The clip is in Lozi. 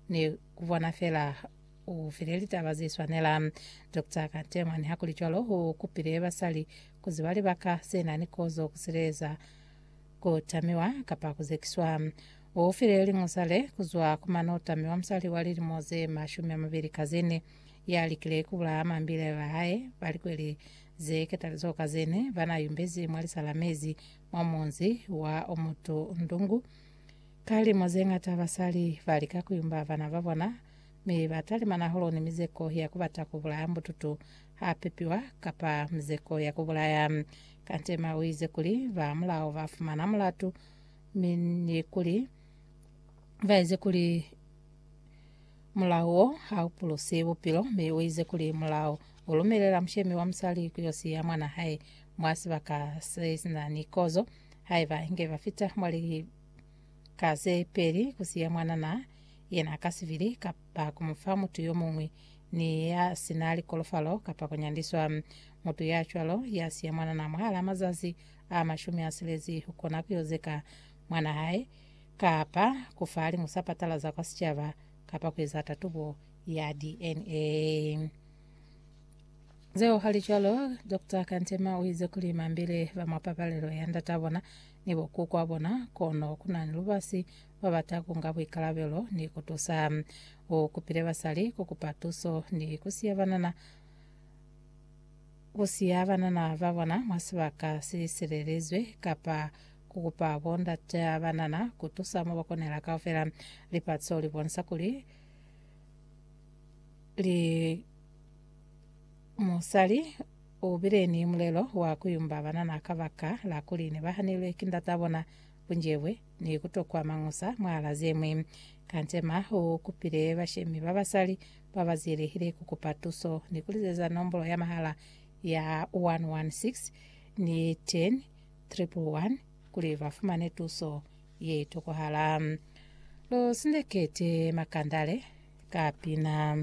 ni kubona fela u file litaba ze swanela. Doctor Kantemwa, nihakulicwalo, u kupile basali kuziba libaka ze na ni kozo kusileeza ku tamiwa kapa ku zekiswa. U file liñusa le kuzwa ku mane u tamiwa musali wa lilimo ze mashumi a mabeli ka ze ne ya likile kubulaya mambile ba hae ba likweli ze ketalizo ka zene ba na yumbezi mwa lisa la mezi mwa munzi wa Omutu Ndungu Ka limo ze ñata basali ba lika ku yumba bana ba bona, mi ba talimana hahulu ni mizeko ya ku bata ku bulaya mbututu ha pepiwa, kapa mizeko ya ku bulaya. Kante Emma u ize kuli, Ba mulao ba fumana mulatu, mi ni kuli ba ize kuli mulao wo ha u pulusi bupilo, mi u ize kuli mulao u lumelela mushemi wa musali ku yo siya mwana hae mwa sibaka se si na ni kozo. haiba inge ba fita mwa lika ze peli, ku siya mwanana yena ka sibili, kapa ku mu fa mutu yo muñwi ni ya si na likolofalo, kapa ku nyandiswa. Mutu ya cwalo ya siya mwanana mwahalaa mazazi a mashumi a silezi, u kona ku yo zeka mwanaa hae, kapa ku fa liñusa patala za kwa sicaba, kapa ku eza tatubo ya DNA. Zeo hali cwalo, Doctor Kantema uize kuli mambile ba mwa papalelo ya ndata bona ni bo kukwa bona, kono kuna ni lubasi babata kunga buikalabelo ni kutusa. U kupile basali kukupa tuso ni kusiya banana kusiya banana ba bona mwa sibaka si silelezwe kapa kukupa bo ndata banana kutusa mo bakonela kaufela. Lipatso libonisa kuli li Musali u bile ni mulelo wa ku yumba banana ka baka la kuli ne ba hanelwe ki ndata bona, bunjebwe, ni ku tokwa mañusa mwahala ze ñwi. Kantema u kupile bashemi ba basali ba ba zielehile ku kupa tuso ni ku lizeza nombolo ya mahala ya 116 ni 10 111 kuli ba fumane tuso ye tokwahala. Lu sindekete makandale ka pina.